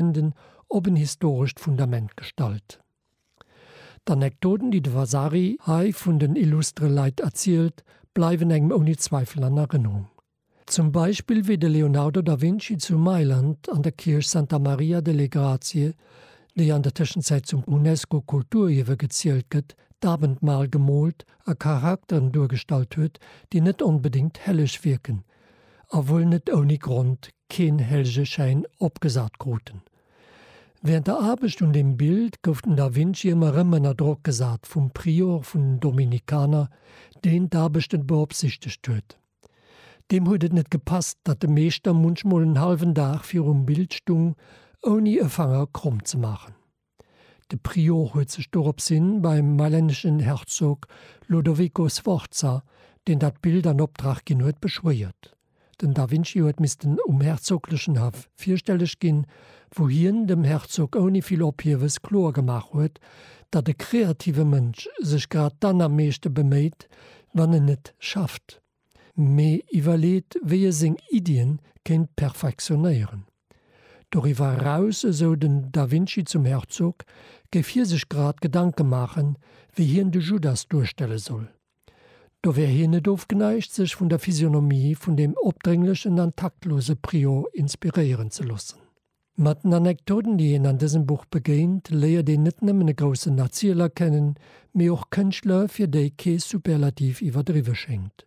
Enden op en historescht Fundament gestallt. D'Anekdoten, déi de Vasari hei vun den illustre Leit erzielt, bleiwen engem ouni Zweifel an Erënnerung. Zum Beispill wéi de Leonardo da Vinci zu Mailand an der Kierch Santa Maria delle Grazie, déi an der Tëschenzäit zum UNESCO-Kulturierwe gezielt gëtt, d'Abendmahl gemoolt a Charakteren duergestallt huet, déi net onbedéngt helleg wierken, a wuel net ouni Grond keen Helljeschäin opgesat kruten. Während der Aarbecht un dem Bild gouf den da Vinci ëmmer erëm ënner Drock gesat vum Prior vun den Dominikaner, deen d'Aarbechten beopsichtegt huet. Deem huet et net gepasst, datt de Meeschter munchmol en hallwen Dag virum Bild stung, ouni e Fanger kromm ze maachen. De Prior huet sech doropshi beim mailänneschen Herzog Lodovico Sforza, deen dat Bild an Optrag ginn huet, beschwéiert. Den da Vinci huet missten um herzoglechen Haff virstelleg ginn, wou hien dem Herzog ouni vill Ophiewes kloer gemaach huet, datt e kreative Mënsch sech grad dann am meeschte beméit, wann en net schafft, mee iwwerleet, wéi e seng Iddie kéint perfektionéieren. Doriwwer eraus, esou den Da Vinci zum Herzog, géif hie sech grad Gedanke maachen, wéi hien de Judas duerstelle soll. Do wär hien net ofgeneigt, sech vun der Physionomie vun deem opdrénglechen an taktlose Prior inspiréieren ze loossen. Mat den Anektoten, déi een an dësem Buch begéint, léiert een net nëmmen e groussen Erzieler kennen, mee och Kënschtler, fir déi kee Superlativ iwwerdriwwe schéngt.